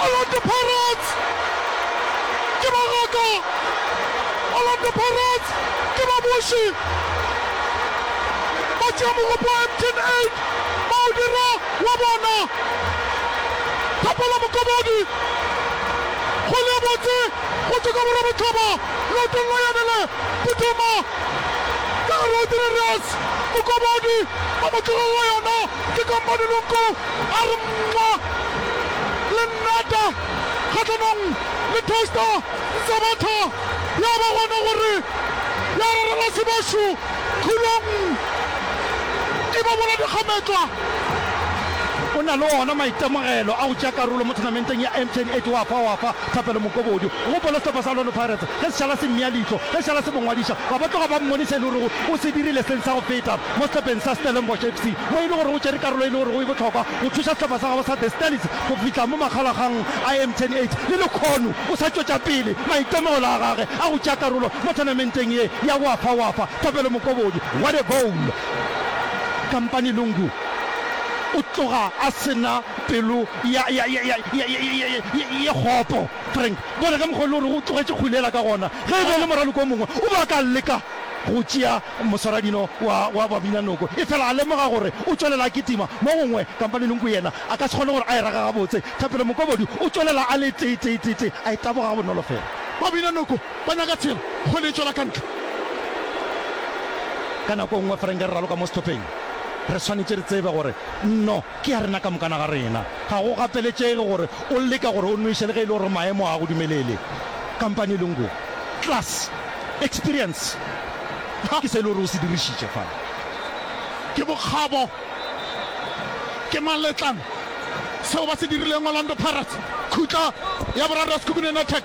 Orlando Pirates ke ba ngaka, Orlando Pirates ke ba boši, ba tšea mogopo wa Mtn 8 ba o dira wa bona. Thapelo Mokobedi, kgwele e botse go tšwa ka borebotlhaba leotong la yane le phuthuma ka gare go Tirireus Mokobedi ba mo tlogelela yona. Ke kampanelong ko, a re mwa. Le nnata kgahlanong le Toaster Nzabatha ya ba gona gore ya rarela Sebašu Khulong e ba bola dikgametšwa. O na le ona maitemogelo a go tšea karolo mo thunamenteng ya MTN 8 wa fa wa fa Thapelo Mokobodi go gopola sehlopha sa Orlando Pirates ge se šala se mmea leihlo ge se šala se mo ngwadiša ba ba tloga ba mmone se e le gorego o se dirile seng sa go feta mo sehlopheng sa Stellenbosch FC, mo e le gore o tšere karolo e le gorego e bohlokwa go thuša sehlopha sa gabo sa The Stellies go fihla mo makgalaggang a Mtn 8. Le lekhono o sa tšwetša pele maitemogelo a gage a go tšea karolo mo tournamenteng ye ya Wafa Wafa. Thapelo Mokobodi, what a goal! Kampane Lungu o tloga a se na pelo ya ye kgopo. Frank, bona ka mokgwa o e le gorego o tlogetše kgwele yela ka gona, ge e be e le moraloko o mongwe o be a ka leka. go tšea moswaradino wa, wa babinanoko, efela a lemoga gore o tšwelela a kitima. Mo gongwe Kampanelunku yena a ka se kgone gore a e rage gabotse. Thapelo Mokobodi o tšwelela a le tee-tee-tee-tee, a e taboga gabonolo fela. Babinanoko ba nyaka tshelo go le e tšwela ka ntle. Ka nako e nngwe Ferenke re raloka mo sehlopheng, re swanetše re tsebe gore nno Ke ya rena ka mokana ga rena. Ga go gapeletšege gore o leka gore o nweše le ge e le gore maemo ga a go dumelele. Kampane e le ngwe. Class. Experience. Ha, ke se e le gore o se dirišitše fa. Ke bokgabo. Ke maletlana. Seo ba se dirileng Orlando Pirates. Khutla ya boraro ya Sekhukhune United.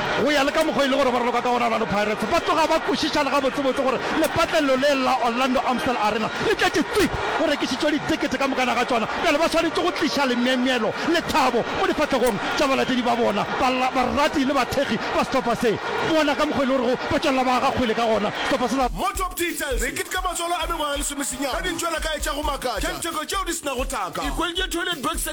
Go ya le ka mokgwa e le gore ba raloka ka gona Orlando Pirates ba tloga ba kwešiša le gabotsebotse gore lepatlelelo le la Orlando Amstel Arena le tletše twi, go rekišitšwe ditekete ka mokana ga tšona, bjale ba swanetše go tliša lemyemyelo le thabo mo difahlegong tša balatedi ba bona, barati le bathekgi ba sehlopha se. Bona ka mokgwa e le gorego ba tšwelela ba aga kgwele ka gona sehlopha se sa. More Top Details e ketka matswalo a mengwaga e lesomesenyane ka dintšwelakae tša go makatša, tša letheko tšeo di se nago taka. E hweditše Toilet Box.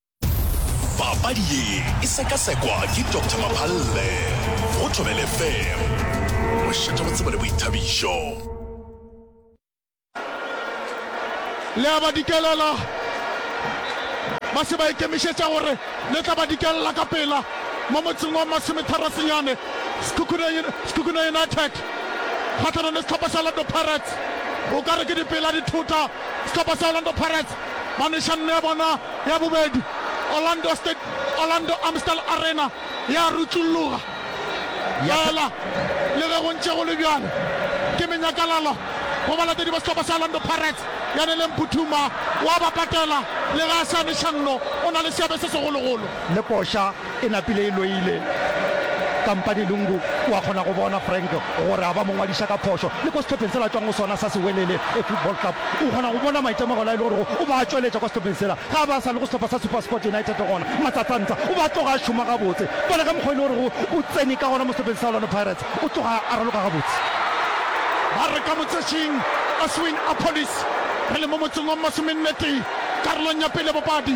papadi ye e sekasekwa ke dr maphalle go thobele fem mošate go tsebo le boithabišo le a ba dikelela ba se ba ikemišetša gore le tla ba dikelela ka pela mo motseng wa masometharosenyane sekhukhune united kgatlhanong le setlhopha sa orlando pirates o ka re ke dipela dithota setlhopha sa orlando pirates Manišanno ya bona ya bobedi, Orlando State Orlando Amstel Arena, ya rutšulloga. Fela le ge go ntše go le bjalo, ke menyakalalo go balatedi ba sehlopha sa Orlando Pirates ya neleng phuthuma wa ba patela le ge a se a. Mešanno o na le seabe se segologolo. Le koša. E napile e loile. Kampane Lungu o a kgona go bona Frank gore a ba mo ngwadiša ka phošo. Le ko sehlopheng sela a tšwang go sona sa Sewelele Football Club, o kgona go bona maitemogelo a e le gorego o ba a tšweletša kwa sehlopheng sela. Ge a ba a sa le go sehlopha sa Supersport United gona, Matsatsantsa o ba a tloga a šoma gabotse. Bona ka mokgwa e le gorego o tsene ka gona mo sehlopheng sa Orlando Pirates, o tloga a raloka gabotse. Ba re ka motšetšing, Oswin Appollis, re le mo motseng wa Mmasomennetee, karolong ya pele bopadi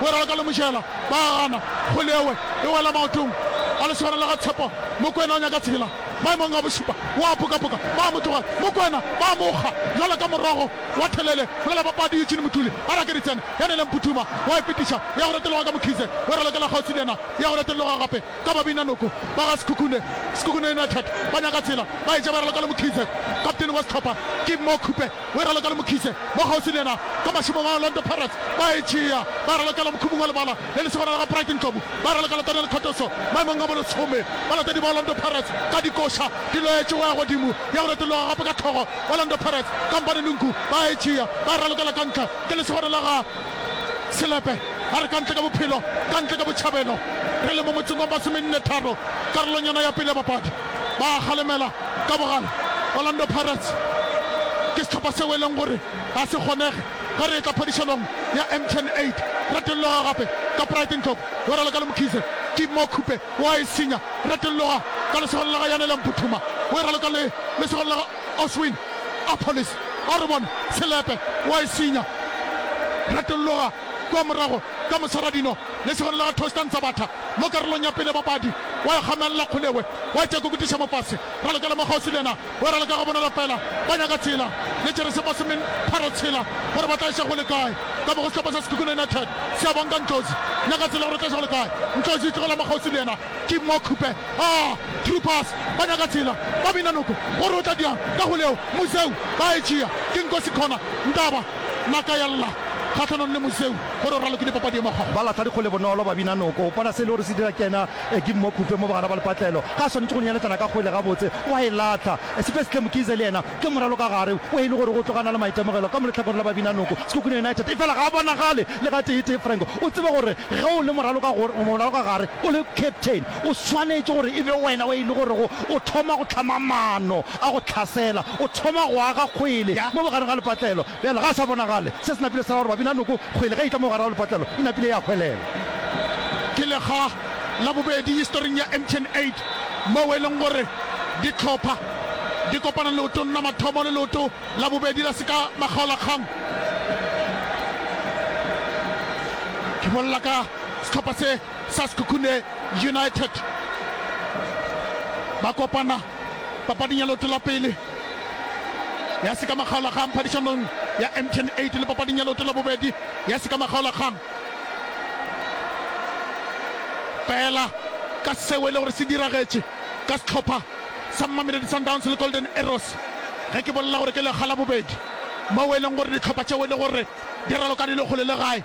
Mogwera wa ka le Mojela ba a gana, kgole ewe e wela maotong a lesogana la ga Tshepo. Mokwena o nyaka tshela maemong a bošupa, o a pokapoka, ba a mo tlogela. Mokwena ba a mo kga bjalo ka morogo wa thelele. Mola bapadi Eugene Motuli a ra ke Ritsene ya neleng Phuthuma, wa e fetiša e ya go reteloga ka Mokhize, Weralo ke la kgauswi le yena e ya go reteloga gape. ka babinanoko ba ga Sekhukhune, Sekhukhune United, ba nyaka tsela ba etša ba raloka le Mkhize. Kaptene wa sehlopha ke Mo Khupe we raloka le Mkhize mo kgauswi le yena ka mašemong a Orlando Pirates. Ba e tšea ba ralokela mokhumong wa lebala le lesogana la ga Bright Ndlovu, ba raloka le Daniel Khotoso maemong a bolesome. Balatedi ba Orlando Pirates ka dikoša di loetše go ya godimo ya go retologa gape ka hlogo. Orlando Pirates, Kampane Nunku, ba e tšea ba e ralokela ka ntle ke lesogana la ga. Selepe a re, Kantle ka bophelo, kantle ka botšhabelo. Re le mo motseng wa masomenne-tharo, karolong yona ya pele ya papadi. Ba a kgalemela ka bogale. Orlando Pirates ke sehlopha seo e leng gore ga se kgonege ge re etla phadišanong ya MTN 8. Retelloga gape ka Pride Ndlovu, yo raloka le Mkhize. Ke mo Khupe o a e senya. Retelloga ka lesogong la ga Yanele Mphuthuma, o e raloka le lesogong la ga. Oswin Appollis a re bona selepe wa e senya. Retologa kua morago ka mosaradino lesegonela ga Toaster Ntsabatha mo karolong ya pele bapadi wa e kgamelela Kgolewe wa e tšakokutiša mofase. Ralokela mo kgauswi le yena o e raloka gabonolo fela ba nyaka tshela le Keresemose min tharo tshela gore ba tla eša go le kae ka mo go sehlopha sa Sekhukhune United se a bonka Ntlozi nyaka tshela gore e tla eša go le kae Ntlozi tlogela mo kgauswi le yena Ke mma Khupe a through pass ba nyaka tsela ba bina noko gore o tla diang ka go leo Museu ba e tšea ke Nkosi Khona Ntaba naka ya lla kgahlanong le Museu gore o ralwe ke dipapadi e mokgwa. Ba lahla dikgole bonolo ba bina noko bona se e le gore se dira ke ena ke mma Khupe mo bogara ba lepatlelo ga a swanetše go nyeletšana ka kgole gabotse wa e lahla Siphe Shle Mkhize le yena Ke moralo ka gare o e le gore go tlo gana le maitemogelo ka mo lehlakoreng la babinanoko. Sekhukhune United efela ga a bonagale le ga tee-tee. Frank, o tsebe gore ge o le moralo ka gore, moralo ka gare, o le captain, o swanetše gore e be wena o e le gorego o thoma go hlama maano a go hlasela, o thoma go aga kgwele mo bogare ga lepatlelo. Bjale, ga a sa bonagale. Se se napile sa ba gore babinanoko kgwele ge e tla mo gare ga lepatlelo e napile ya hwelela. Ke lega la bobedi historing ya Ancient Aid moo e leng gore dihlopha di kopana leotong la mathomo le leoto la bobedi la seka makgaolakgang. Ke bolela ka sehlopha se sa Sekhukhune United. Ba kopana papading ya leoto la pele. ya sekamagaolakgang phadišanong ya Mtn 8 le papading ya leoto la bobedi ya sekamagaolakgang. Fela ka seo e le gore se diragetše ka sehlopha sa Mamelodi Sundowns le Golden Arrows, ge ke bolela gore ke lekga la bobedi, moo e leng gore dihlopha tšeo e le gore di raloka di le kgole le gae,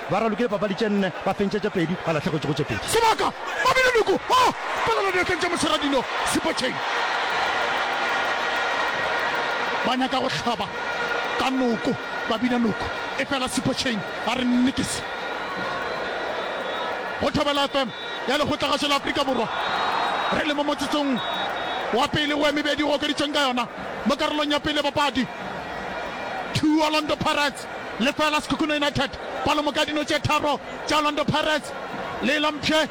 Ba ralokile papadi tše nne, ba fentša tše pedi, ba lahlegetšego tše pedi. Sebaka! Babina Luku a palela diatleng tša Moseradilo Sipotšheng. Ba nyaka go hlaba ka noko Babina Luku, efela Sipotšheng a re nnikisi. Go Thobela FM ya Lekgotlagašo la Afrika Borwa, re le mo motsetsong wa pele wo e mebedi e okeditšweng ka yona mo karolong ya pele ya papadi. Two Orlando Pirates. United. Lefela Sekhukhune United palomo ka dino tše tharo tša Orlando Pirates. Leelo mpshe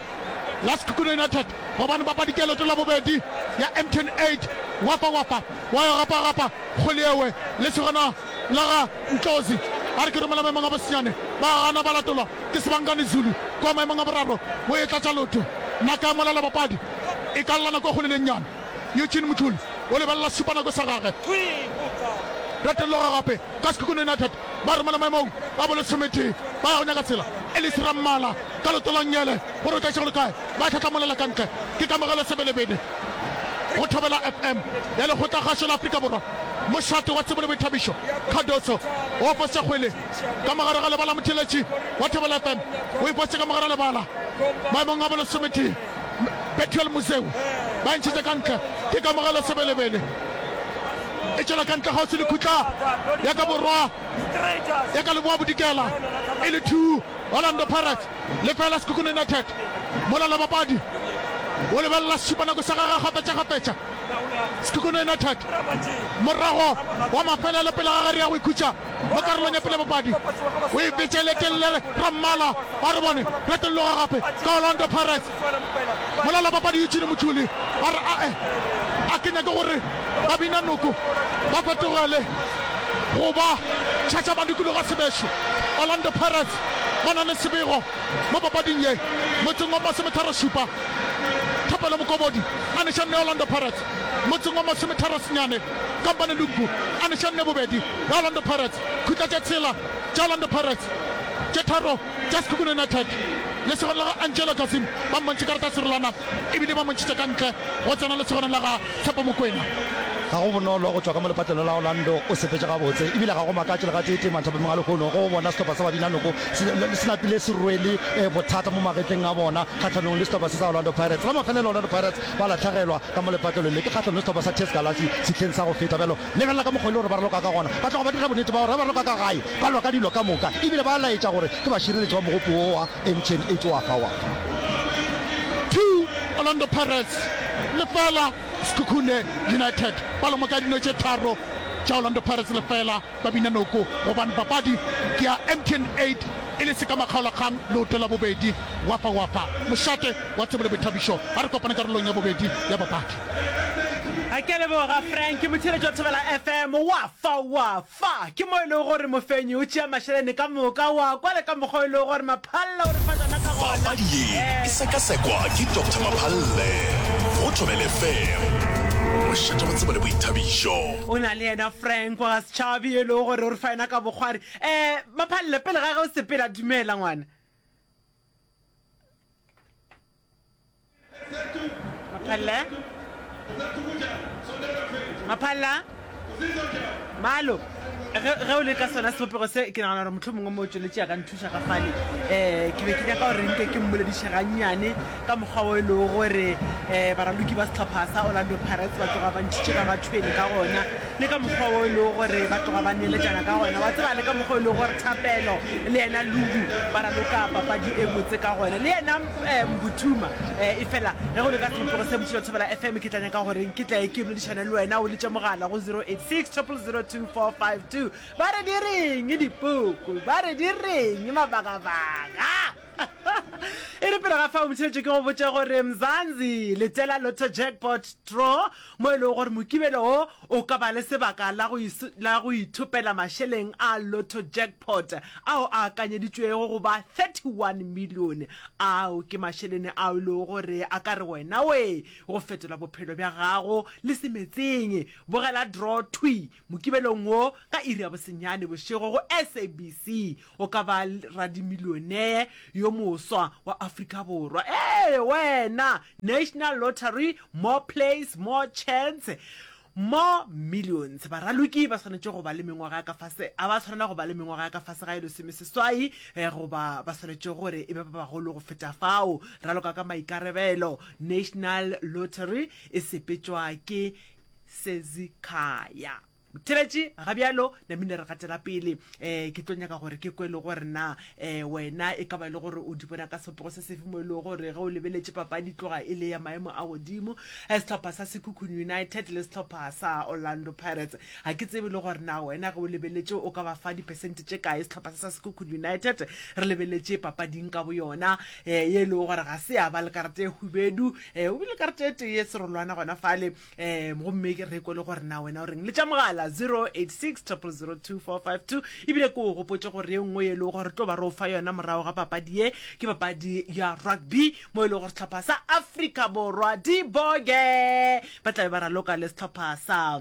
la Sekhukhune United gobane ba padikeloto la bobedi ya Empton Aid Wafa Wafa wa yo gapa gapa kgole yewe le segona la ga Ntlozi a re ke romela maemong a bosinyane ba gana ba latolwa ke Sibangani Zulu kwa maemong a boraro wo e tlatša lotho naka ya mola la bapadi e ka llana kwa kgole le nnyane. Eugene Mthuli o lebelela sesupanako sa gagwe. Retelloga gape ka Sekhukhune United ba romela maemong a bo lesometee ba ya go nyaka tsela. Ellis Rammala ka leoto la Ngele gore o tlaiše go le kae, ba e tlhahlamolela ka ntle ke Kamogelo Sebelebede go Thobela FM ya Lekgotlakgašo la Afrika Borwa. Mošate wa tsebo le boithabišo Cardoso o fose kgwele ka mo gare ga lebala, motšheletši wa Thobela FM o e fose ka mo gare ga lebala maemong a bo lesometee. Bethuel Moseu ba e ntšhitše ka ntle. Ke Kamogelo Sebelebele e tšwela ka ntle kgauswi le khutla ya ka borwa ya ka leboa bodikela e le 2 Orlando Pirates le fela Sekhukhune United. Mola lebapadi o lebelela sešupanako sa gagwe kgafetšakgafetša. Sekhukhune United morago wa mafelelo pele ga gare ya go ikhutša. mo karolong ya pele bopadi o e fetše le tellere rammala ba re bone retolloga gape ka orlando pirates molala papadi eugene motšuli ba re ae a ke nyake gore ba bina noko ba fetogele go ba tšhatša ba dikologa sebešo orlando pirates ba na le sebego mo papading ye motseng wa masometharošupa thapelo mokobodi a neša nne orlando pirates motseng wa masometharosenyane Kampane Lungu a neša nne bobedi bja Orlando Pirates khutla tše tshela tša Orlando Pirates, tše tharo tša Sekhukhune United. Lesogana la ga Angelo Gazim ba mmontšhe karata ya serolwana e bile ba montšhitše ka ntle go tsena lesogana la ga Tshepo Mokwena. Ga go bonolo go tšwa ka mo lepatlelo la Orlando o sepetše gabotse e bile ga go makatše le gateetee manthabamong a lehono go bona sehlopha sa Babinanoko se napile se rwele bothata mo magetleng a bona kgahlanong le sehlopha se sa Orlando Pirates. La mafelelo Orlando Pirates ba lahlegelwa ka mo lepatlelong le. Ke kgahlanong le sehlopha sa Test Galase sehleng sa go feta. Bjalo lebelela ka mokgwa e le gore ba raloka ka gona. Ba tloga ba dira bonnete ba gore ge ba raloka ka gae, ba lwa ka dilo ka moka e bile ba laetša gore ke bašireletši ba mogopo wo wa Mtn e tšoa fa wa. Two Orlando Pirates, lefela Sekhukhune United. Palomoka ya dino tše tharo tša Orlando Pirates, lefela. Ba bina noko gobane papadi ke ya MTN 8 e le sekamakgaolakgang leoto la bobedi. Wafa Wafa, mošate wa Thobile Boithabišo ba re kopane karolong ya bobedi ya papadi. A ke a leboga Frank, ke motheeletši wa Thobela FM. Wafa Wafa ke mo e lego gore mofenyi o tšea mašeleni ka moka, o a kwa le ka mokgwa o e lego gore Maphallela o re fa tšona ka gona. Papadi ye e sekasekwa ke Doctor Maphalle go Thobela FM, mošate wa Thobile Boithabišo. O na le yena Frank. Mpo ga se tšhabi e lego gore o re fa yona ka bokgwari. Eh, Maphalle, pele ga ge o sepela, dumela ngwana. Maphalle? Maphalla? Malo, ge, ge o le ka sona sebopego se, ke nagana gore mohlomongwe mo o tšweletše ya ka ntho. Šagafale um ke be ke nyaka gore nke ke mmolediše gannyane ka mokgwa o e lego gore um baraloki ba setlhopha sa orlando pirates ba tloga ba ntšhitše ka bathweni ka gona le ka mokgwa o e lego gore ba tloga ba neletšana ka gona wa tseba le ka mokgwa o e lego gore thapelo le yena ludu ba raloka papadi e botse ka gona le yena um botuma um e fela ge go le ka tlhopego se botšhilo thobela f m ke tla nyaka goreng ke tlae ke boledišane le wena o letše mogala go 086 002 452 Ba re di reng dipuku, ba re di reng mabagabaga. E re pele ga fa o motšheletše ke go botše gore Mzanzi letela Lotto Jackpot Draw mo e lego gore mokibelo wo o ka ba le sebaka la go la go ithopela mašeleng a Lotto Jackpot ao a akanyeditšwego go ba 31 millione. Ao ke mašelene ao e lego gore a ka re wena we go fetola bophelo bja gago le se metseng. Bogela draw thwi Mokibelong wo, ka iri ya bosenyane bošego go SABC, o ka ba radimilionee yo moswa wa Afrika Borwa. Ee, wena! National Lottery, More Plays, More Chance, More Millions. Baraloki ba swanetše go ba le mengwaga ya ka fase, a ba swanela go ba le mengwaga ya ka fase ga e lesomeseswai goba ba swanetše gore e be ba bagolo go feta fao, raloka ka maikarebelo. National Lottery e sepetšwa ke Sezikhaya. Motheletši, ga bjalo na mine re gatela pele. Um ke tlo nyaka gore ke kwe le gore na um wena e ka ba e le gore o di bona ka sepego se sefe mo e lego gore ge o lebeletše papadi tloga e le ya maemo a godimo um sehlopha sa sekhukhung united le sehlopha sa orlando pirates ga ke tsebe le gore na wena ge o lebeletše o ka ba fa dipersente tše kae sehlopha sa sa sekhukhung united re lebeletše papading ka bo yona um ye e lego gore ga se ya ba le karata e hubedu um o bile karete e tee serolwana gona fale um gomme ke re ko le gore na wena o reng le tša mogala 086 002452 ebile ke o gopotse gore ye nngwe e lego gore tlo ba re o fa yona morago ga papadi ye ke papadi ya rugby mo e lego gore setlhopha sa africa borwa diboge ba tlabe ba raloka le setlhopha sa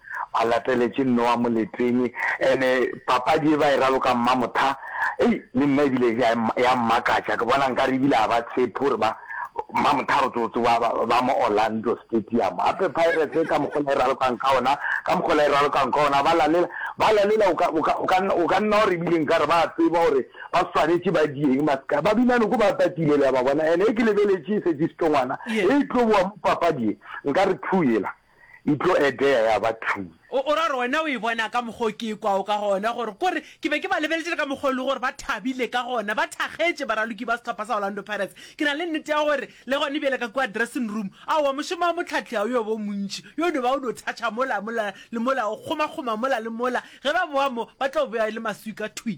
Ba lateletše Nnoa moleteng. Ene papadi ye ba e raloka Mmamotha, ei, le nna e bile ya, ya mmakatša. Ke bona nkare e bile a ba tshepe gore ba, Mmamotha re tlo tsoba ba, ba mo Orlando Stadium. Gape Pirates ka mokgo la e ralokang ka ona, ka mokgo la e ralokang ka ona, ba lalela, ba lalela, o ka, o ka, o ka, o ka nna wa re e bile nkare ba a tseba gore ba swanetše ba dieng, ba seka, ba bina noko ba tatile, le a ba bona. Ene ge ke lebeletše e šetše setongwana, Ye. e tlo boa mo papadi ye, nkare thu yela. e tlo etea ya ba thwi. O ra gore wena o e bona ka mokgwa o ke e kwago ka gona, gore kore ke be ke ba lebeletše le ka mokgwa o le gore ba thabile ka gona, ba thakgetše baraloki ba sehlopha sa Orlando Pirates. Ke na le nnete ya gore le gone bjale ka kua dressing room, aowa mošomo wa mohlahli ga o yo ba o montši, yo no ba o no thatha mola, mola le mola, o kgomakgoma mola le mola, ge ba bowa mo ba tlo bowa e le maswi ka thwi.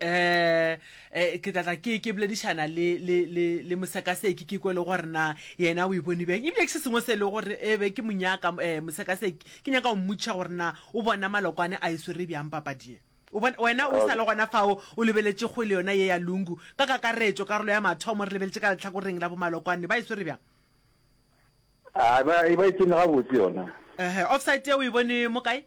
eh eh ke tlatla ke ke boledišana le le le le mosekaseki ke kwele gore na yena o e bone bjang ebile ke se sengwe se e le gore e be ke monyaka um eh, mosekaseki ke nyaka go mmotšiša gore na o bona malokwane a e swere bjang papadie wena o sa le gona fao o lebeletše go le yona ye ya lungu ka kakaretšo karolo ya mathomo re lebeletše ka letlhakoreng la bomalokwane ba e swere bjang a ba e ba e tsene gabotse yona um offside ye o e bone mo kae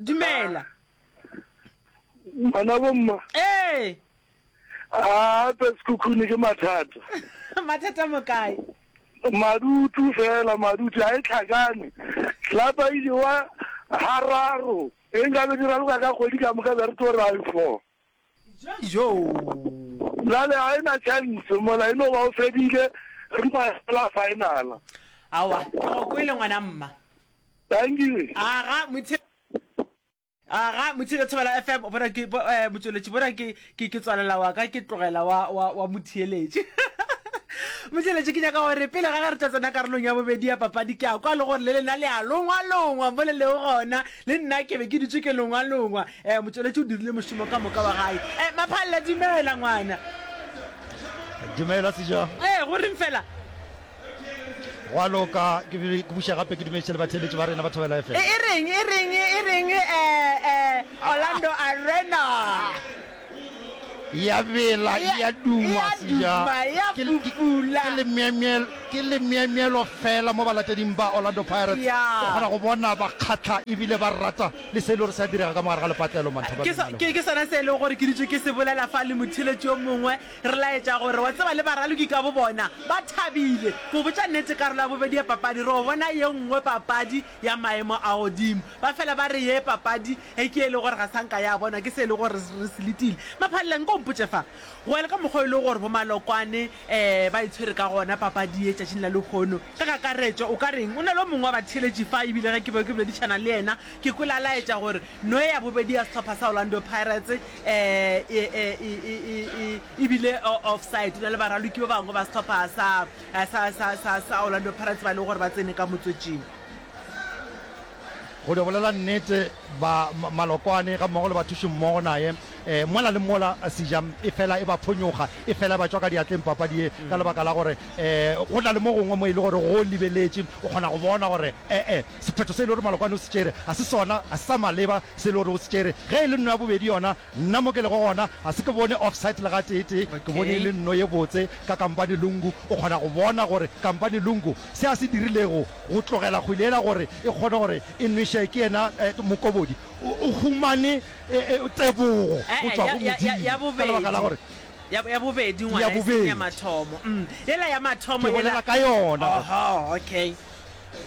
Dumela. Ngwana bo mma. Eh. Ah, pe sekhukhune ke mathata. mathata mo kae? Madutu fela madutu a e tlhakane. Tlapa ile wa hararo. E nka be dira loka ka kgwedi ka moka be re tlo ra e four. Joo! Bjale ga e na chance mola e no ba o fedile re ba la final. Aowa, ke go kwele ngwana mma. Thank you. Aga motse Aga motse le thobela FM bona ke eh, motsoletši bona ke ke ke tswalela wa ka ke tlogela wa wa wa motheeletši. Motšeletše ke nyaka gore pele ga ge re tla tsena karolong ya bobedi ya papadi ke a kwa le gore le lena le a longwa longwa mo le lego gona le nna ke be ke dutse ke longwalongwa um eh, motšweletši o dirile mošomo ka moka wa gae um eh, maphalela dumela ngwana dumela seja ee go reng fela wa loka ke buša gape ke dumediše le batheletši ba rena ba thobela efe e reng e reng e reng um orlando arena ya bela ya duma seja ke lemyemyel ke lemyemyelo fela mo balateding ba Orlando Pirates o kgona go bona ba kgatlha ebile ba rata le se e le gore se a direga ka mogare ga lepatlelo manthaba ke ke sona se e leng gore ke ditšo ke se bolela fa le motheletši yo mongwe re laetša gore wa tseba le baraloki ka bo bona ba thabile go botša nnete karolo ya bobedi ya papadi re o bona ye nngwe papadi ya maemo a godimo Ba fela ba re, Ye papadi e ke e lego gore ga sa nka ya bonwa ke se e lego gore re se letile. Maphalela, nko o mpotše fa, go ya le ka mokgwa o e lego gore Bomalokwane ba e tshwere ka gona papadi ye tšatšing la lehono, ka kakaretšo o ka reng? O na le o mongwe wa batheeletši fa, e bile ge ke bego ke boledišana le yena, ke kwele a laetša gore no ye ya bobedi ya sehlopha sa Orlando Pirates e bile offside. O na le baraloki ba bangwe ba sehlopha sa Orlando Pirates ba e lego gore ba tsene ka motswetšing. Go dio bolela nnete, ba Malokwane ga mmogo le bathušimmogo naye eh, mola le mola sija e fela e ba phonyoga, e fela e ba tšwa ka diatleng papadi ye, ka lebaka la gore eh, go na le mo gongwe mo e le gore go libeletše, o kgona go bona gore ee, sephetho se e le gore Malokwane o se tšere ga se sona, ga se sa maleba se e le gore o se tšere. Ge e le nno ya bobedi yona, Nna mo ke lego gona ga se ke bone offside le gatee tee, ke bone e le nno ye botse ka Kampane Lungu. O kgona go bona gore Kampane Lungu se a se dirilego go tlogela kgwele yela gore e kgone gore e nwešee ke yena Mokobodi. O humane tebogo go tšwa go Modimo ka lebaka la gore Ya bobedi ngwana, e seng ya mathomo. Ke bolela ka yona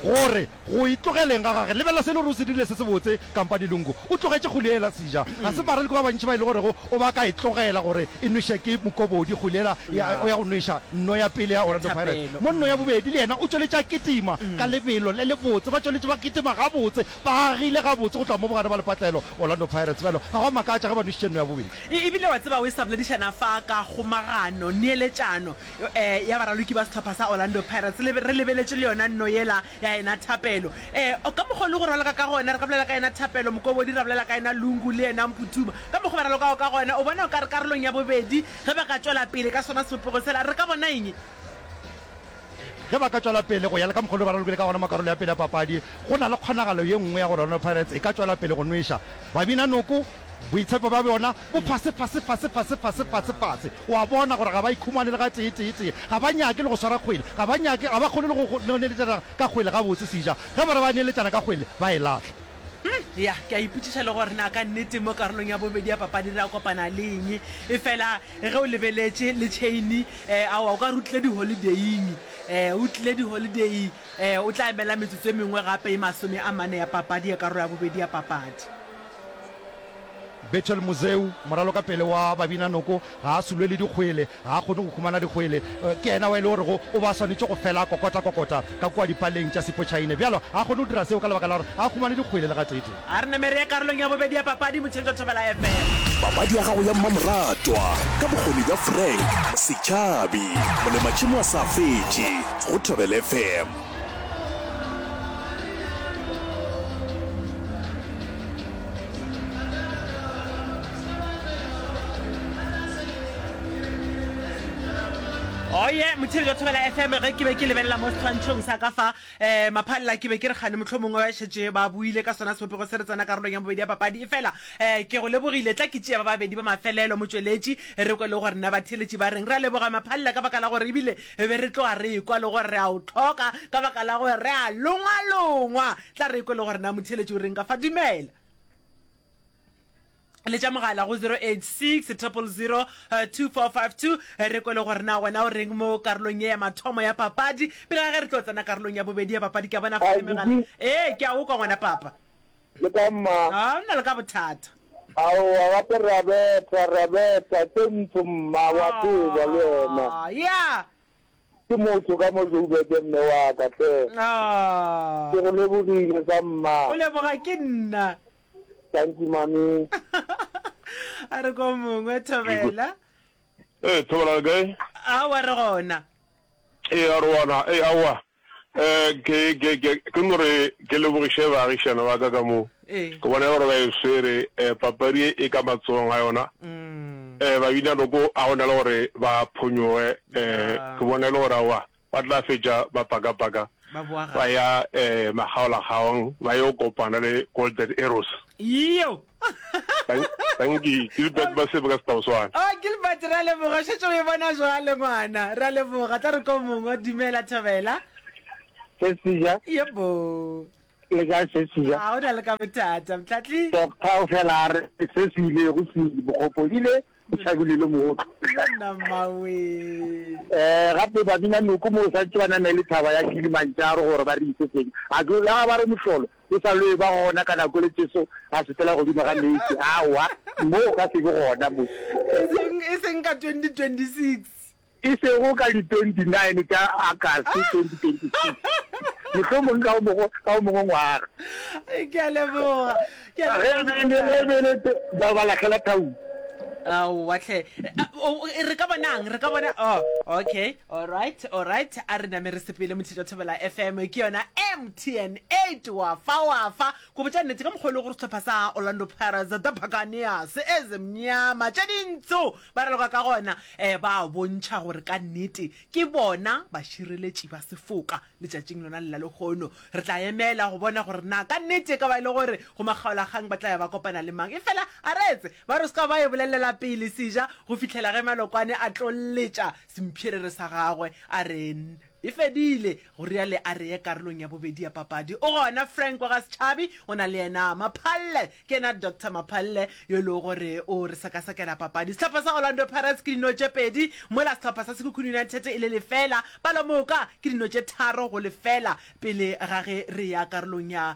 gore. Go itlogeleng ga gage, lebelela se e le gore o se dirile se sebotse. Kampane Lungu o tlogetše kgoli yela sija. Ga se baralki ba bantši ba e le gorego o ba ka e tlogela gore e nwešwe ke mokobodi. Kgoli yela ya o ya go nwešwa nno ya pele ya Orlando Pirates, mo nno ya bobedi le yena o tšweletše a kitima ka lebelo le lebotse. Ba tšweletše ba kitima gabotse, ba agile gabotse go tloga mo bogare ba lepatlelo. Orlando Pirates bjalo ga go a makatša ge ba nwešitše nno ya bobedi. E, ebile wa tseba o e sa boledišana fa ka kgomagano, neeletšano, ya baraloki ba sehlopha sa Orlando Pirates le re lebeletše le yona nno yela ya ena Thapelo um ka mokgo le go raloka ka gona re ka bolela ka ena Thapelo Mokobodi ra bolela ka ena Lungu le ena Mputuba ka mokgo ba ralokago ka gona o bona o ka re karolong ya bobedi ge ba ka tšwela pele ka sona sebopego sela re ka bona eng ge ba ka tšwela pele go ya le ka mokgo le ba ralokile ka gona mo karolo ya pele ya papadi go na le kgonagalo ye nngwe ya gore Orlando Pirates e ka tšwela pele go nweša Babina Noko. Boitshepo bja bona bo fase, fase, fase, fase, fase, fase, fase. O a bona gore ga ba ikhumane le gatee, tee, tee. Ga ba nyake le go swara kgwele. Ga ba nyake, ga ba kgone le go, go neeletšana ka kgwele gabotse. Seja, ge ba re ba neeletšana ka kgwele, ba e lahla. Hm, ya, ke a ipotšiša le gore na ka nnete mo karolong ya bobedi ya papadi re a kopana le eng. Efela ge o lebeletše le tšheini, ee, aowa, o ka re o tlile diholideing. Ee, o tlile diholideing. Ee, o tla emela metsotso e mengwe gape e masome a mane ya papadi, ya karolo ya bobedi ya papadi. Bethel Muzeu, moralo ka pele wa Babinanoko, ga a sulwe le dikgwele, ga a kgone go humana dikgwele. Ke yena wa e le gorego o be a swanetše go fela a kokota-kokota ka kua dipaleng tša Sipho-Chaine. Bjalo ga a kgone go dira seo ka lebaka la gore ga a humane dikgwele le gatee-tee. A re namere ya karolong ya bobedi ya papadi Motšhetšwa Thobela FM. Papadi ya gago ya mmamoratwa ka bokgoni bja Frank Setšhabi, molematšhemo a sa fetše go Thobela FM. oye oh, motshedi ka thobela fm ge ke be ke lebelela mo setshwantšhong sa ka fa um maphalela ke be ke re gane motlho mongwe ba šetse ba buile ka sona sebopego se re tsena karolong ya bobedi ya papadi e fela um ke go lebogile tla ke tšea ba babedi ba mafelelo motsweletši re kwe le gore na batheletši ba reng re a leboga maphalela ka baka la gore ebile e be re tloga re ekwa le gore re a o tlhoka ka baka la gore re a longwalongwa tla re ekwe le gore na motheletši o reng ka fa dumela le tša mogala go 086 000 2452 re kwele gore na wena o reng mo karolong ye ya mathomo ya papadi pele ga ge re tlo tsena karolong ya bobedi ya papadi ke a bona fa le megala ee ke a o kwa ngwana papa Le ka mma. A o na le ka bothata? Aowa, gape re a betha, re a betha. Ke ntsho, mma, wa tseba, le wena. A, ya. Ke motho ka mo Joburg, mme wa ka, hle. A. Ke go lebogile, sa mma. O leboga ke nna. Thank you, mami. A re ko mongwe, Thobela. Ee, Thobela, le kae? Aowa, re gona. Ee, a re wana. Ee, aowa. Ke, ke, ke, ke no re ke lebogiše baagišana ba ka ka mo ke bona gore ba e swere papadi e e ka matsogong a yona. Um babina noko a gona le gore ba phonyoge, um ke bona e le gore aowa ba tla fetša ba pakapaka ba ya um makgaolakgaong ba yo kopana le Golden Arrows. Iyo! tanki gilbert ba sebe ka setaoswana o oh, gilbert ra leboga šetse o e bona jwale ngwana ra leboga tla re ko mongwe dumela thobela sesija yebo le ka sesija ga o na le ka bothata mtlatli tokgao fela a re se se ile go se bokgopo ile o tšhabile le mootlo um gape babina noko mo o sa ntse ba namele lethaba ya kilimantšaro gore ba re ise teng a ke la ba re mohlolo e sa loe ba gona ka nako le tšeso a se fela godimo ga meetse awa mo o ka se be gona mo e seng ka 2026 E sego ka di 29 tša Agasti 2026, mohlomong ka wo mongwe ngwaga, ge e le ge e le te ba ba lahlela thaung. Aowa hle, re ka bona'ng? Re ka bona, oh, okay, alright, alright, a re name re sepele Mothetša Thobela FM, ke yona MTN 8, wa fa, wa fa. Go botša nnete, ka mokgwa o lego gore sehlopha sa Orlando Pirates, the Buccaneers, e zemnyama tše dintsho. Ba raloka ka gona ba a bontšha gore ka nnete ke bona bašireletši ba sefoka. Letšatšing lona le la lehono re tla emela go bona gore na ka nnete e ka ba e le gore go makgaolakgang ba tla ya ba kopana le mang. Efela a re etse ba re o se ka ba e bolelela pele seja go fihlela ge Malokwane a tlo letša sempherere sa gagwe a re, E fedile, go reale a reye karolong ya bobedi ya papadi. O gona Frank wa ga Setšhabi, o na le yena Maphalle. Ke yena Doctor Maphalle yo e lego gore o re sekasakela papadi. Sehlopha sa Orlando Pirates ke dino tše pedi, mola sehlopha sa Sekhukhune United e le lefela. Palomoka ke dino tše tharo go lefela pele ga ge re eya karolong ya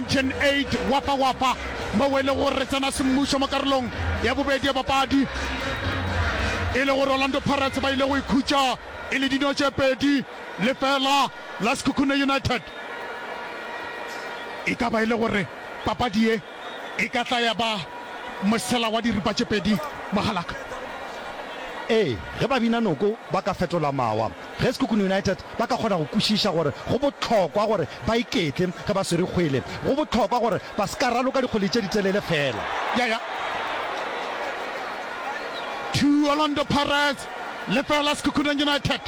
Mtn Eight Wapa Wapa moo e lego gore re tsena semmušo mo karolong ya bobedi ya papadi e le gore Orlando Pirates ba ile go ikhutša e le dino tše pedi le fela la Sekhukhune United. E ka ba e le gore papadi ye e ka tla ya ba mosela wa diripa tše pedi, mogalaka? Ee, ge Babinanoko ba ka fetola mawa Ge Sekhukhune United ba ka kgona go kwešiša gore go bohlokwa gore ba iketle ge ba swere kgwele, go bohlokwa gore ba se ka raloka dikgwele tše ditelele feela. Ya ya to Orlando Pirates, lefeela Sekhukhune United.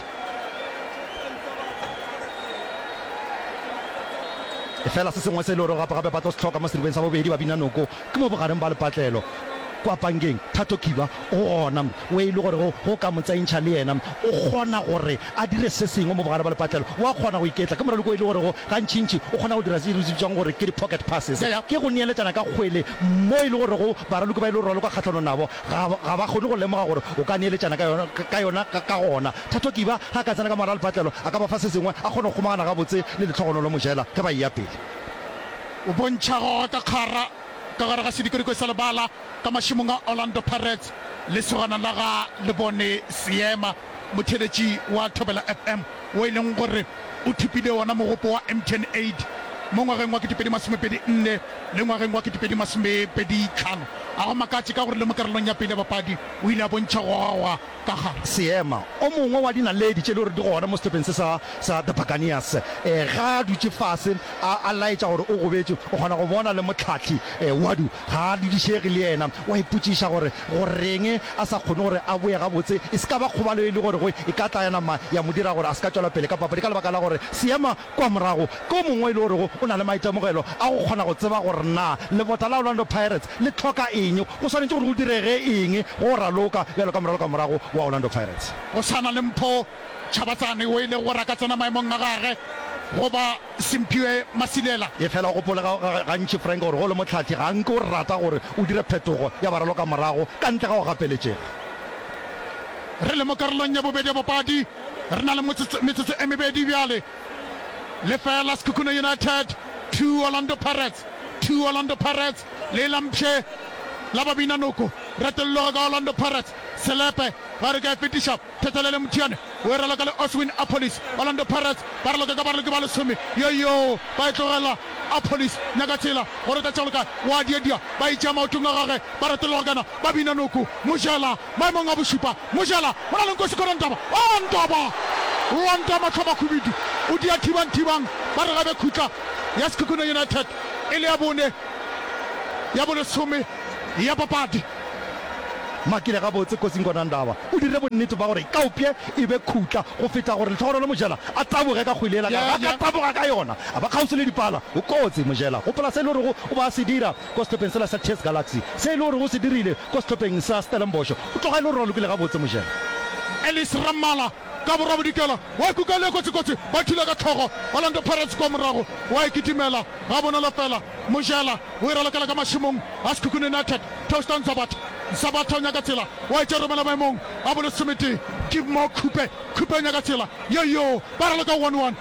Lefeela se sengwe se e le gore gape-gape ba tlo se hloka mo seribeng sa bobedi, ba bina noko. Ke mo bogareng bwa lepatlelo kwa pankeng, Thato Kiba o gona, o e le gore go go ka mo tsentšha le yena. O kgona gore a dire se sengwe mo bogare bwa lepatlelo. O a kgona go iketla. Ke moraloki o e le gore go gantšintši o kgona go dira se re se bitsang gore ke di-pocket passes. Ke go neeletšana ka kgwele mo e le gore go baraloki ba e le gore o raloka kgahlanong nabo ga ga ba kgone go lemoga gore o ka neeletšana ka yona ka yona. Ka gona Thato Kiba ge a ka tsena ka mogare ga lepatlelo a ka ba fa se sengwe, a kgone go kgomagana gabotse le lehlogonolo mojela ge ba eya pele. O bontšha gora ka kgara ka gare ga sedikodiko sa lebala ka mašemong a Orlando Pirates. Lesogana la ga Lebone Seema, motheeletši wa Thobela FM, wo e leng gore o thopile wona mogopo wa MTN Aid mo ngwageng wa 2024 le ngwageng wa 2025, ga go makatše ka gore le mo karolong ya pele ya bapadi o ile a bontšha gora Ka ga Seema, o mongwe wa dinaledi tše e lego gore di gona mo sehlopheng se sa sa The Buccaneers, ge a dutše fase a a laetša gore o gobetše, o kgona go bona le mohlahli Wadu ga a dudišege le yena. O a ipotšiša gore goreng a sa kgone gore a boe gabotse. E se ka ba kgobalo e le gorego e ka tla ya nama ya mo dira gore a se ka tšwela pele ka papadi ka lebaka la gore Seema kua morago ke o mongwe yo e le gorego o na le maitemogelo a go kgona go tseba gore na lebota la Orlando Pirates le hloka eng, go swanetše gore go direge eng go o raloka bjalo ka moraloka wa morago wa Orlando Pirates. Go swana le Mpho Tshabatsane o e lego gore a ka tsena maemong a gagwe, goba Simphiwe Masilela. Efela o gopole gantši, Frank, gore ge o le mohlathi ga nke o rata gore o dire phetogo ya baraloka morago ka ntle ga go gapeletšega. Re le mo karolong ya bobedi ya bopadi, re na le metsotso e mebedi bjale. lefela Sekhukhune United two Orlando Pirates two Orlando Pirates le la mpshe la babina noko retolloga ka Orlando Pirates selepe ba re ka e fetiša Thetelele Mothiane o e raloka le Oswin Appolis Orlando Pirates ba raloka ka baraloki ba lesome yoyo ba e tlogela Appolis Nyakatsela go reta tšalo ka wa diadia ba e tšea maotong a gage ba retolloga kana babina noko Mojela Maemong a bošupa, Mojela o na le nko sekorong Ntaba, oo Ntaba! Wa ntama tlhomakhubedu, o dia thibang thibang ba re ga be khutla ya Sekhukhune United e le ya bone ya bolesome ya papadi. Makile gabotse kotsing gona Ntaba o dirile bonnete ba gore Kaupje e be khutla go feta gore Lehlohonolo Mojela a taboge ka kgwele yela ka ge a ka taboga ka yona a ba kgauswi le dipala. O kotsi Mojela, gopola se e le gorego o ba a se dira. kwa sehlopheng sela sa Thes Galaxy, se e le gore o se dirile kwa sehlopheng sa Stellenbosch, o tloga e le gore o lokile gabotse, Mojela. Ellis Rammala ka borabodikela wa kukang ye kotsikotsi, ba thula ka hlogo Orlando Pirates kwa morago, wa e kitimela gabonolo fela, Mojela o e ralokela ka mašemong a Sekhukhune United, Taustan Zabatha Zabatha o nyaka tsela, wa e tša romela maemong a bolesometee, Keepmore Khupe Khupe o nyaka tsela, yoyoo ba raloka one one.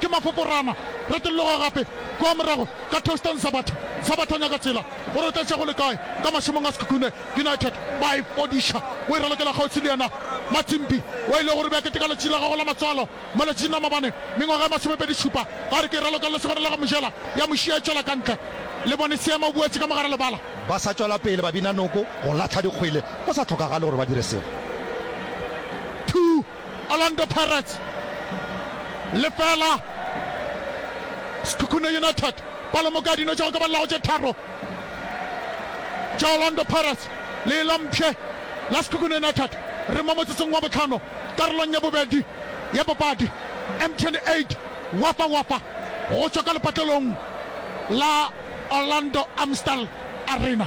ke mafoko rama re tolloga gape kua morago ka Toustan Sabatha Sabatha o nyaka tsela gore o tletše go le kae ka mašemong a Sekhukhune United ba e fodiša o e ralokela kgauswi le yena Matimpi wa ile go re bea kete ka letši la gago la matswalo mo letšing la mabane mengwaga e masomepedi šupa a re ke e raloka le segona la go mojela ya mošia e tšwela kantle le bone seema o boetše ka mogare lebala ba sa tšwela pele ba bina noko go lahla dikgwele go sa tlhokagale gore ba dire selo. Two. Orlando Pirates lefela, Sekhukhune United ba lemoka dino tša go ka ba lago tše tharo tša Orlando Pirates. Leela mpshe la Sekhukhune United re mo motsotsong wa bohlano karolong ya bobedi ya papadi. Mtn Aid Wafa Wafa go tšwa ka lepatlelong la Orlando Amstel Arena.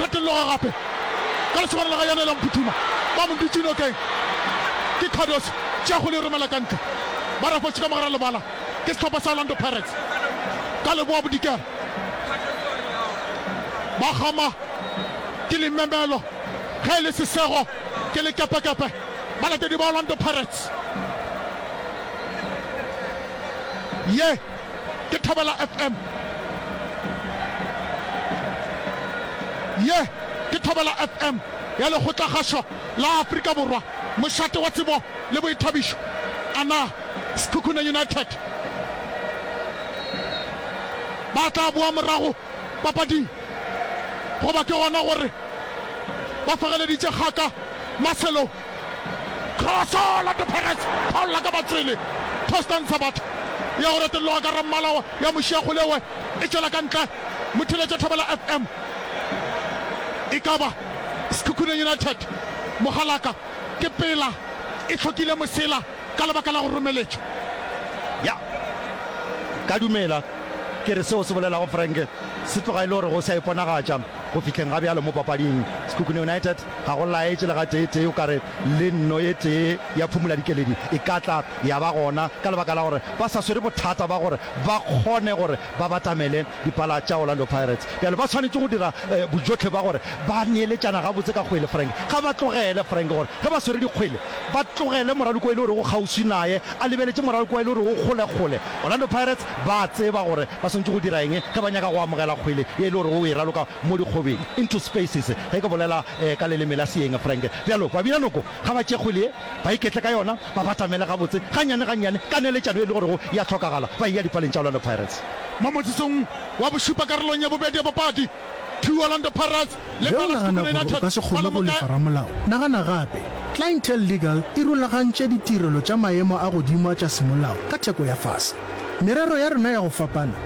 Retologa gape ka lesogana la ga Yane la Mphuthuma, ba mo dutše nokeng. Ke Cardoso, tšea kgole e romela ka ntle. Ba rafošitše ka mogare a lebala ke sehlopha sa Orlando Pirates. Ka leboa bodikela ba kgama ke limemelo, ge e le sesego ke lekepekepe. Balatedi ba Orlando Pirates ye. Ke Thobela FM. Ye ke Thobela FM ya Lekgotlakgašo la Afrika Borwa, mošate wa tsebo le boithabišo. A na Sekhukhune United ba tla boa morago papading, goba ke gona gore ba fegeleditše kgaka maselong? Kroso, Orlando Pirates ba lla ka batswele. Tostan Sabatho ya go retelloga ka rammala ya mošiakgole we e tšwela ka ntle, Motheletša Thobela FM e ka ba Sekhukhune United mogalaka ke pela e hlokile mosela ka lebaka la go romeletša. Ya, ka dumela ke re seo se bolelago Frank se tloga e le gore go sa iponagatša go fihleng ga bjalo mo papading. Sekhukhune United Ga go laetše le gateetee o ka re le nno e tee ya phumoladikeledi e ka tla ya ba gona ka lebaka la gore ba sa swere bothata ba gore ba kgone gore ba batamele dipala tša Orlando Pirates. Bjale ba swanetše go dira bojotlhe ba gore ba neeletšana gabotse ka kgwele, Frank. Ga ba tlogele, Frank, gore ge ba swere dikgwele ba tlogele moraloki wa e le gore o kgauswi naye a lebeletše moraloki wa e le gore o kgolekgole. Orlando Pirates ba a tseba gore ba swanetše go dira eng ge ba nyaka go amogela kgwele ye e le gore o e raloka mo dikgobeng, into spaces, ge ke bolela ka leleme la Seeng, Frank. Bjalo, babinanoko ga ba tše kgwele ye, ba iketle ka yona, ba batamele gabotse, gannyane-gannyane, ka neletšano ye e lego gore ya hlokagala, ba eya dipaleng tša Orlando Pirates. Mo motsesong wa bošupa karolong ya bobedi ya bopaki, two Orlando Pirates le Ge o Palace nagana Tukuna gore o United ka se ba kgone le go mokae? lefa ramolao, nagana gape. Clientele Legal e rulagantše ditirelo tša maemo a godimo a tša semolao ka theko ya fase. Merero ya rena ya go fapana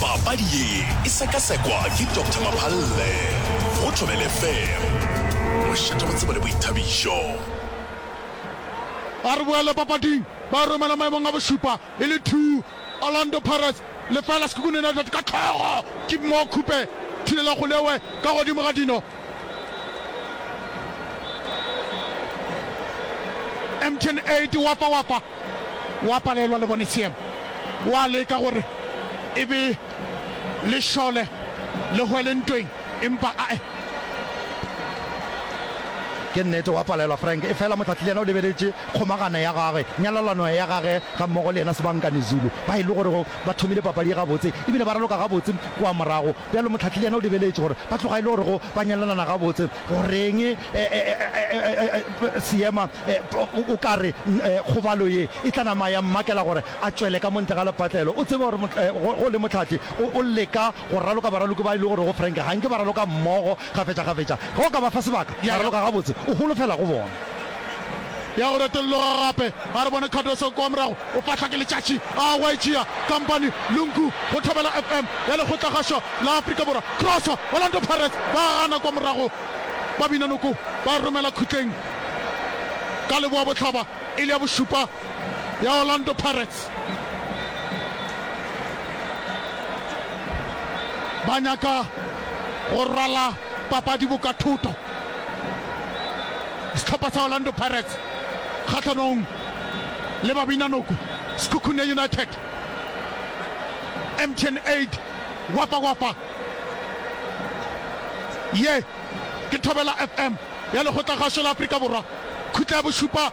papadi ye e sekasekwa ke dr maphalle go thobele fem go šetša go tseba le boithabišo a re boele papading ba romela maemong a bošupa e le two orlando pirates lefela sekukun united ka tlhogo ke mo khupe thilela golewe ka godimo ga dino mtn 8 wafa wafa o a palelwa le bone seema. O a leka gore e be le šole le hwele ntweng empa ae. Ke nnete o a palelwa Frank efela Motlhatli yena o lebeletše kgomagano ya gagwe, nyalelano ya gage gammogo le yena Sibankani Zulu ba e le gorego ba thomile papadi ye gabotse ebile ba raloka gabotse kua morago. Bjalo Mohlahli yena o lebeletše gore ba tloga e le gore go ba nyalelana gabotse. Goreng Seema o ka re kgobalo ye e tla nama ya mmakela gore a tšwele ka mo ntle ga lepatlelo? O tseba gore go le Mohlahli o leka go raloka baraloki ba e le gore go Frank ga nke ba raloka mmogo. kgafetšakgafetša, ge o ka ba fa sebaka, ya raloka gabotse, o holofela go bona. Ya go retologa gape. A re bone Cardoso kwa morago, o fahlwa ke letšatši, a hwa e tšea Kompany le Nku go thobela FM ya lekgotlagašo la Afrika Borwa. Kroso! Orlando Pirates ba gana kwa morago, ba bina noko, ba romela khutleng ka leboabohlaba e le ya bošupa. ya Orlando Pirates ba nyaka go rwala papadi boka thuto sehlopha sa Orlando Pirates kgahlanong le babinanoko Sekhukhune United MTN 8 wapa wapa ye ke Thobela FM ya lekgotlakgašo la Afrika Borwa khutla ya bošupa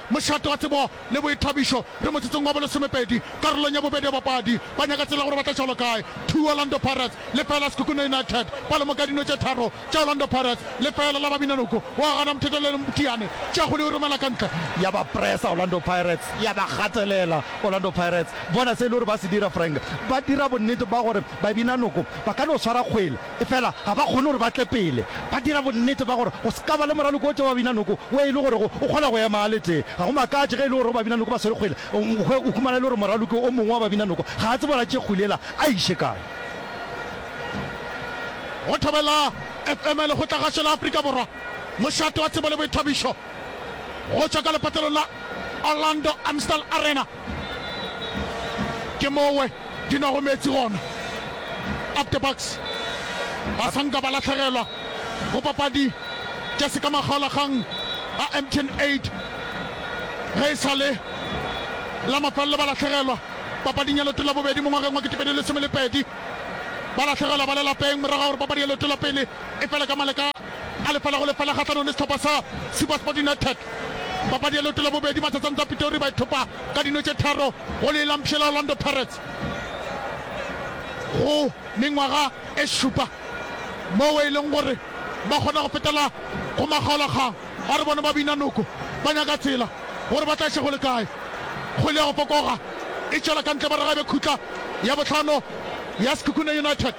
Mošate wa tsebo le boithabišo re motsotsong wa bolesomepedi karolong ya bobedi ya bapadi ba nyaka tsela gore ba tla šalo kae. Two Orlando Pirates, lefeela Sekhukhune United ba lemoka dino tše tharo tša Orlando Pirates, lefeela la Babinanoko wa gana mothetho le Mteane tše kgolo e romela ka ntle. Ya ba pressa Orlando Pirates, ya ba gatelela Orlando Pirates. Bona se e le gore ba se dira Frank, ba dira bonnete ba gore Babinanoko ba ka no swara kgwele. Efela ga ba kgone gore ba tle pele ba dira bonnete ba gore go se ka ba le moraloko o tee wa babinanoko wo e le gorego o kgona go ema a le tee. Ga go makatše ge e le gorego babinanoko ba swere kgwele go hwe o humana e le gore moraloki o mongwe wa babinanoko ga a tsebe gore a tšee kgwele yela a e iše kae. Go thobela FM le go tla gašo la Afrika Borwa, mošate wa tsebo le boithabišo go tšwa ka lepatelong la Orlando Amstel Arena. ke mowe di nwago meetse gona up the box ba sanka ba latlhegelwa go papadi tša se ka makgaolagang a mtn 8 ge e sa le la mafelelo ba latlhegelwa papading ya leto la bobedi mo ngwageng wa ketepedi lesome le pedi ba latlhegelwa ba le lapeng morago gore papadi ya leto la pele e fele ka maleka A lefela go lefela kgahlanong le sehlopha sa SuperSport United. Papadi ya leoto la bobedi, Matsatsano tsa Pitori ba ithopa ka dino tše tharo go lee la mpshe la Orlando Pirates go mengwaga e šupa, moo e leng gore ba kgona go fetela go makgaolakgang a re bona ba bina noko ba nyaka tsela gore ba tlaše go le kae. Kgwele ya go fokoga e tšwela ka ntle morago e be khutla ya bohlano ya Sekhukhune United.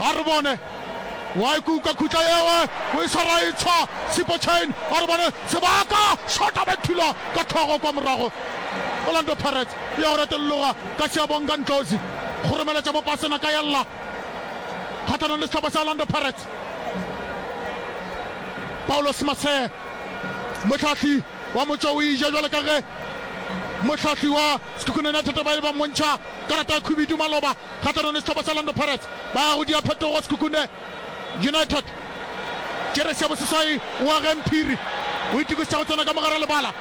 a re bone wa e kuka khutla yewe o e swara e tshwa sipo chain a re bone sebaka shota ba thula ka tlhogo kwa morago Orlando Pirates e ya go retologa ka Seabonga Ndlozi go romeletša mo pasena ka ya lla kgathanong le sehlopha sa Orlando Pirates Paulos Masee mohlahli wa motšo o ija jwale ka ge mohlahli wa Sekhukhune United ba e ba mmontšha Karata ya khubidu maloba kgahlanong le sehlopha sa Orlando Pirates. Ba ya go dia phetogo Sekhukhune United. Jeresi ya boseswai o a geng phiri, o itokisetsa go tsena ka mogare lebala.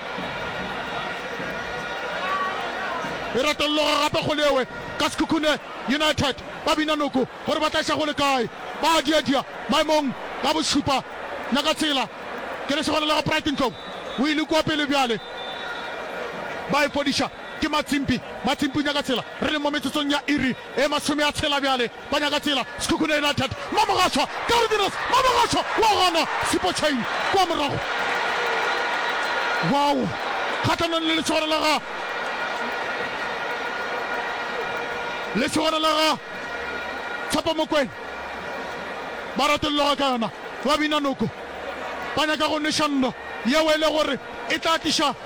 E retologa gape kgole ewe ka Sekhukhune United. Ba bina noko gore ba tla iša kgole kae. Ba a diadia maemong ka bošupa. Nyakatsela ke lesogana la ga Pride Ntlou, o ile kua pele bjale. Ba e fodiša. Ke Matsimpi. Matsimpi o nyaka tsela. Re leng mo metsotsong ya iri e masome a tshela bjale. Ba nyaka tsela. Sekhukhune United. Mamogashoa! Carvinus Mamogashoa wa gana Sipo Chain kwa morago. Wow! Kgahlanong le lesogana la ga. Lesogana la ga Tshepo Mokwena. Ba ratologa ka yona. Ba bina noko. Ba nyaka go nweša nno yeo e le gore e tla tliša.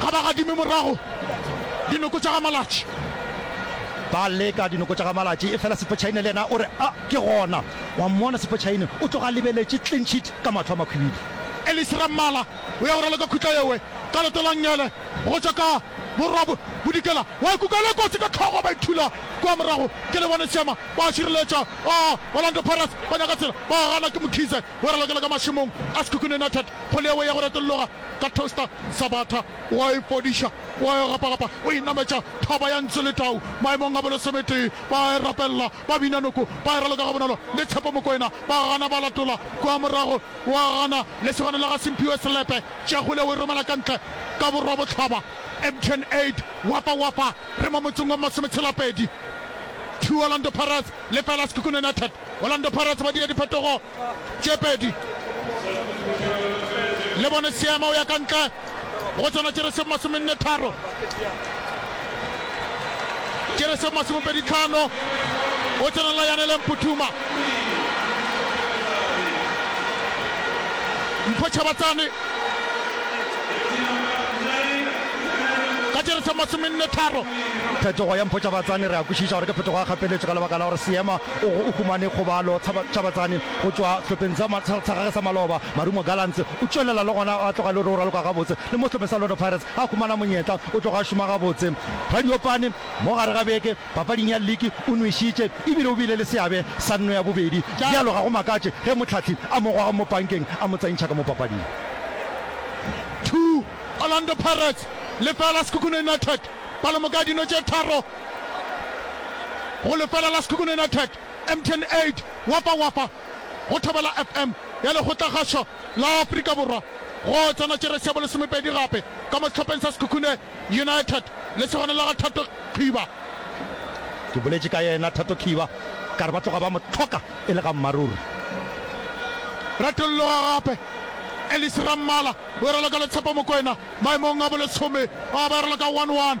Ga ba gadime morago dinoko tša ga Malatši. Ba leka dinoko tša ga Malatši efela Sepotšhaine le yena o re, A, ke gona. Wa mmona Sepotšhaine o tloga a lebeletše clean sheet ka mahlo a makhwibidu. Ellis Rammala o ya go raloka khutla yewe ka leto la ngele go tšwa ka borwa bodikela. Wa e kukela kotsi ka hlogo ba ithula kua morago ke lebone seema. Ba a šireletša. A, Orlando Pirates ba nyaka tsela ba gana ke Mkhize. o ralokela ka mašemong a Sekhukhune United go leawe ya go retologa ka Toaster Sabatha, o a e fodiša, o a e gapagapa, o e nametša thaba ya Ntsu le Tau maemong a bolesometee, ba a e rapelela, ba bina noko, ba e raloka gabonolo le Tshepo Mokoena, ba gana ba latola kua morago, o a gana, lesogana la ga Simphiwe Selepe, Tšeagule o e romela ka ntle ka borwabohlaba, Mtn Aid, Wafa Wafa, re mo motseng wa Masometshela-pedi, two Orlando Pirates lefela Sekhukhune United. Orlando Pirates ba dira diphetogo tše pedi. Le bone Seema o ya ka ntle go tsona tše re se masomenne tharo, tše re se masomepedi tlhano, o tsenela Yanele Mputhuma. Mpho Chabatsane ka tše re se masomenne tharo. Phetogo ya Mpho Chabatsane re a kwešiša gore ke phetogo ya kgapeletšo ka lebaka la gore Seema O o humane kgobalo Tshabatsane go tšwa sehlopheng sa gage sa maloba, Marumo Gallants. O tšwelela le gona a tloga e le gore o raloka gabotse le mo sehlopheng sa Lodo Pirates. Ga a humana monyetla, o tloga a šoma gabotse. Radiopane mo gare ga beke papading ya liki o nwešitše e bile o bile le seabe sa nno ya bobedi. Bjalo ga go makatše ge Motlhathli a mo goga mo pankeng a mo tsentšha ka mo papading. Two, Orlando Pirates, lefeela, Sekhukhune United. Palomoka ya dino tše tharo. go lefela la Sekhukhune United, MTN 8, Wafa Wafa, go Thobela FM ya Lekgotlakgašo la Afrika Borwa, go tsena jeresi ya bolesomepedi gape ka mo sehlopheng sa Sekhukhune United, lesogana la ga Thato Kgiba. Ke boletše ka yena Thato Kgiba ka re ba tloga ba mo hloka e le ga mmaruri. Retologa gape Ellis Rammala o e raloka le Tshepo Mokoena maemong a bolesome, a ba e raloka one one.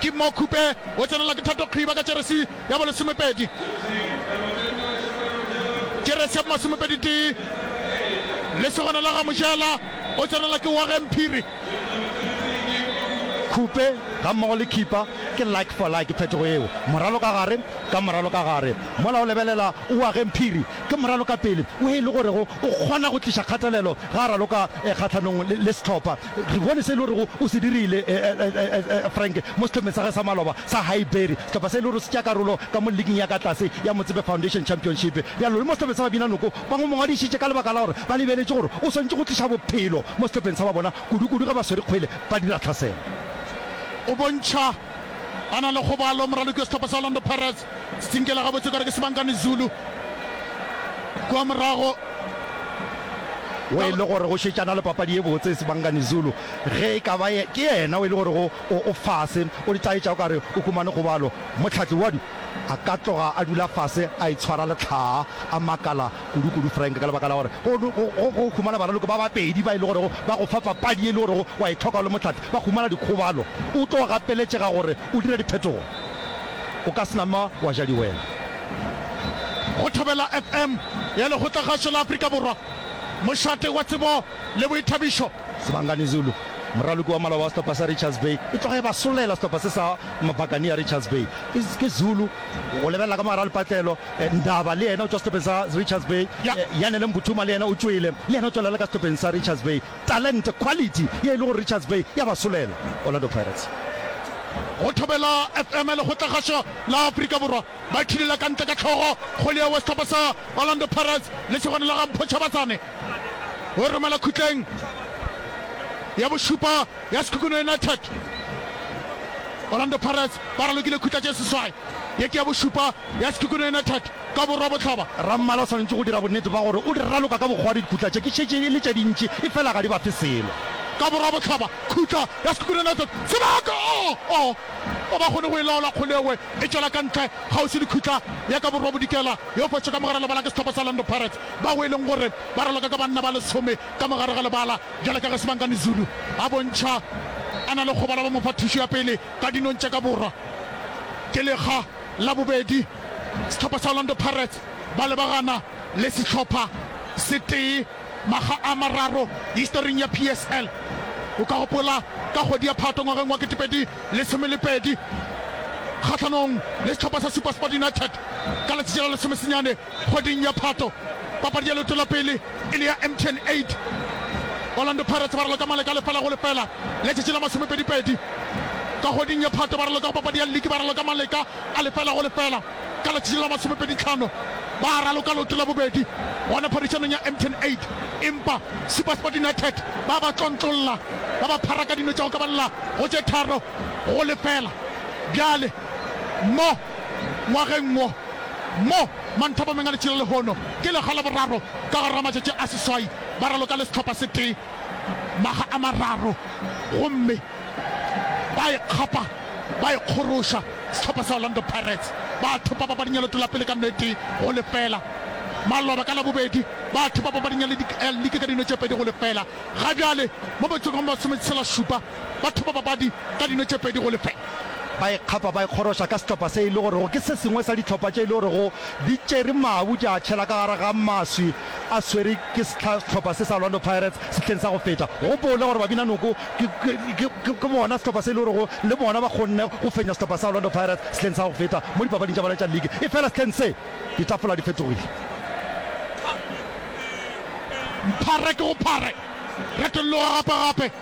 Ke mo Khupe o tsenelwa ke Thato Kgiba ka jeresi ya bolesomepedi. Jeresi ya bomasomepedi-tee, lesogana la ga Mojela, o tsenelwa ke Warren Phiri. Khupe gammogo le Khipa ke like for like, phetogo yeo moralo ka gare ka moralo ka gare. Mola o lebelela Warren Phiri ke moralo ka pele wo e le gorego o kgona go tliša kgatelelo ge a raloka kgahlanong le sehlopha. Re bone se e le gorego o se dirile, Frank, mo sehlopeng sa gagwe sa maloba sa Highbury, sehlopha se e le gore se tšea karolo ka mo liging ya ka tlase ya Motsepe Foundation Championship. Bjalo, le mo sehlopeng sa Babinanoko ba mo mongwadišitše ka lebaka la gore ba lebeletše gore o swanetše go tliša bophelo mo sehlopeng sa ba bona, kudu-kudu ge ba swere kgwele ba dira tlhaselo. O bontšha a na le kgobalo, moraloki wa sehlopha sa Orlando Pirates. Se tsinkela gabotse ekare ke Sibangani Zulu kwa morago. o e le gore go šetšana le papadi ye botse Sibangani Zulu ge e ka ba ye- ke yena o e le gore go o, o fase o di tlaetša o ka re o humane kgobalo. Mohlahli wa du a ka tloga a dula fase a itshwara lehlaa a makala kudukudu Frank, ka lebaka la gore go, go, go humana baraloko ba bapedi ba e le gorego ba go fa papadi ye e le gorego wa e hloka o le mohlapi, ba humana dikgobalo. O tlo gapeletšega gore o dire diphetogo. O ka se nama wa ja diwela. Go Thobela FM ya Lekgotlagašo la Afrika Borwa, mošate wa tsebo le boithabišo. Sibangani Zulu, moraloki wa maloba wa sehlopha sa Richards Bay, e tloga e ba solela sehlopha se sa Mabakania Richards Bay. Ke, ke Zulu, go lebelela ka mogare ga lepatlelo. Ndaba le yena o tšwa sehlopheng sa Richards Bay. Yanele Mbuthuma le yena o tšwele, le yena o tšwa lala ka sehlopheng sa Richards Bay. Talente, quality, ye e le gore Richards Bay ya ba solela. Orlando Pirates. Go Thobela FM le Kgotlagasho la Afrika Borwa ba thulele ka ntle ka hlogo kgole ya sehlopha sa Orlando Pirates, lesogana la ga Mpho Tshabatsane, o e romela khutleng ya bošupa. ya Sekhukhune United. Orlando Pirates ba ralokile khutla tše seswai, ye ke ya bošupa ya Sekhukhune United ka Borwa Bohlaba. Rammala o swanetše go dira bonnete bja gore o di raloka ka bokgwadi dikhutla tše, ke šetše e le tše dintši efela ga di ba fe selo. Ka Borwa Bohlaba, khutla ya Sekhukhune United sebaka oh oh ga ba kgone go e laola, kgolewe e tšwela ka ntle kgauswi le khutla ya ka Borwa Bodikela yo fetše ka mogare lebala ke sehlopha sa Orlando Pirates, bao e leng gore ba raloka ka banna ba lesome ka mogare ga lebala. Bjale ka ge Sibangani Zulu a bontšha a na le kgobalo ba mo fa thušo ya pele ka dinong tša ka borwa. Ke lekga la bobedi sehlopha sa Orlando Pirates ba lebagana le sehlopha se tee makga a mararo historing ya PSL. O ka gopola ka kgwedi ya Phatwe ngwageng wa ketepedi lesome le pedi kgahlanong le sehlopha sa SuperSport United ka letšatši la lesomesenyane Kgweding ya Phato, papadi ya leoto la pele e ne ya MTN 8. Orlando Pirates ba raloka male ka lefela go lefela letšatši la masomepedipedi. Ka kgweding ya Phato ba raloka go papadi ya liki ba raloka maleka a lefela go lefela. Ka letšatši la masomepeditlhano ba raloka leoto la bobedi gona phadišanong ya MTN 8 empa SuperSport United ba ba tlontlolla ba ba phara ka dino tša go kabalela go tše tharo go lefela. Bjale mo. Ngwageng wo, mo Manthopo Mengadichilo lehono ke lega la boraro ka gare ga matšatši a seswai ba raloka le sehlopha se tee maga a mararo gomme ba ikgapa ba ikgoroša sehlopha sa Orlando Pirates ba thopa papading ya leoto la pele ka nno e tee go lefela. Maloba ka Labobedi ba thopa papading ya liki ka dino tše pedi go lefela. Ga bjale mo metsong e masome tshela šupa Ba thopa papadi ka dino tše pedi go lefela. Ba e kgapa ba e kgoroša ka sehlopha se e le gorego ke se sengwe sa dihlopha tše e le gorego di tšere mabu di a tšhela ka gare ga maswi a swere ke sehlopha se sa Orlando Pirates sehleng sa go feta. Go gopole gore Babinanoko ke bona sehlopha se e le gorego le bona ba kgonne go fenya sehlopha sa Orlando Pirates sehleng sa go feta mo dipapading tša bona tša league. Efela sehleng se, ditafola di fetogile. Phare ke go phare, retolloga gape-gape.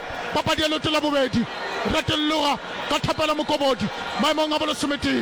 papadi ya leoto la bobedi, Ratolloga ka thapelo mokobodi maemong a bolesometee.